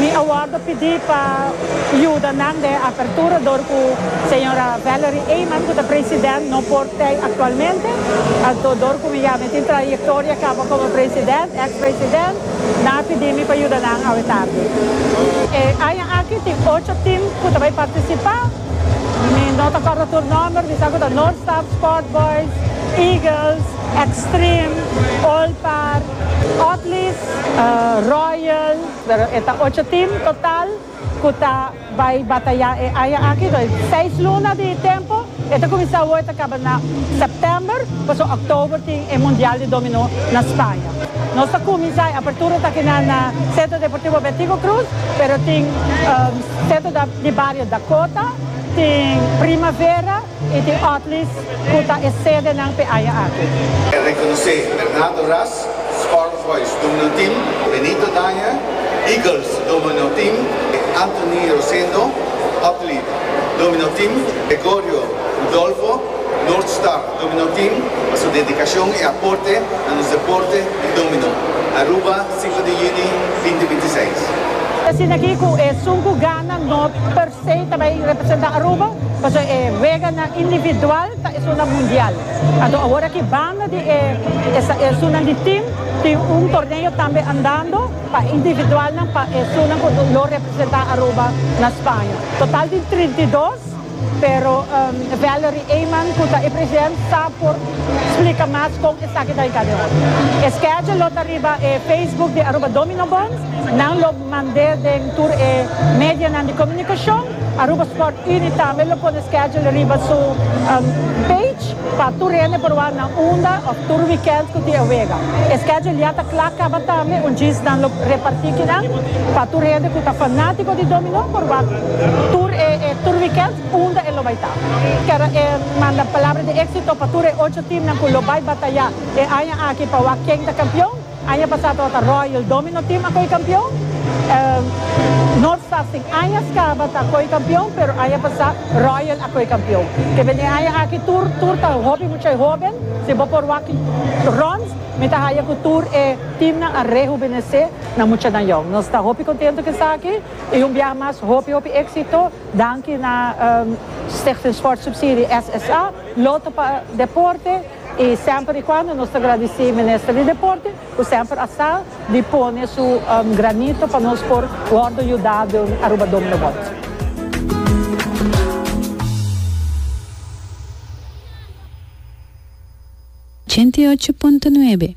Mi a wordo pidi pa yuda nan den apertura dor cu Sra. Valerie Eyman cu ta President no por tey actualmente. Anto dor cu mi ya mi tin trayectoria caba como President, ex President, nan a pidi mi pa yuda nan awe tardi. E aña aki tin ocho team cu ta bay participa. Mi no ta corda tur nomber, mi sa cu ta North Star, Sport Boys, Eagles. Extreme, Olpar, Otlies, Royal, pero e ta ocho team total cu ta bay bataya e aña aki, toer seis luna di tempo, e ta cuminsa awo e ta caba na September, pasobra October tin e Mundial di Domino na Spaña. Nos ta cuminsa e apertura taki nan na Centro Deportivo Bertico Cruz, pero tin Centro di Bario Dakota, tin Primavera, E tin otlis cu ta e sedenan p'e aña aki. E reconocé Bernardo Ras, Spaarvoice Domino Team, Benito Daña, Eagles Domino Team, Anthony Rosendo, Otlied Domino Team, Gregorio Rudolfo, North Star Domino Team, pa su dedicacion i aporte na nos deporte di domino, Aruba, Sifra di Juni, binti binti seis. Asina ki cu e suncu gana no. Sei ta bay representa Aruba pasobra e weganan individual ta esunnan mundial. Anto awor aki banda di e esunnan di team tin un torneo tambe andando pa individualnan pa esunnan cu lo representa Aruba na Spaña. Total di trinta i dos pero Valerie Eyman cu ta e president sa por splica mas con esaki ta yega den ora. E schedule lo ta riba e Facebook di Aruba Domino Bond. Nan lo. Mand'é den tur e medianan di komunikashon. Aruba Sport Unie tambe lo pone schedule riba su page pa tur hende por wak nan unda òf tur wikènt ku tin e wega. E schedule ya ta kla kaba tambe un djis nan lo repartí kinan pa tur hende ku ta fanátiko di dominó por wak tur e tur wikènt unda e lo bai ta. Kèr e manda palabra di éksito pa tur e ocho teamnan ku lo bai batayá e aña aki pa wak ken ta kampion. Aña pasá tabata Royal Domino Team a koe kampion. North Stars tin añas kaba ta koe kampion, pero aña pasá Royal a koe kampion. Kebia den aña aki tur tur ta hopi muchai hoben. Si bo por wak runs mi ta haya ku tur e teamnan a rehubenesé na mucha nan yon. Nos ta hopi kontentu ku esaki i un biaha mas hopi hopi éksito. Danki na Stichting Sportsubsidie, SSA, Lotto pa Deporte. Y semper y cuando nos ta gradici Minister di Deporte cu semper a sa di pone su granito pa nos por wordo yuda door Aruba Dom no Bot. Ochenta i ocho punto nuebe.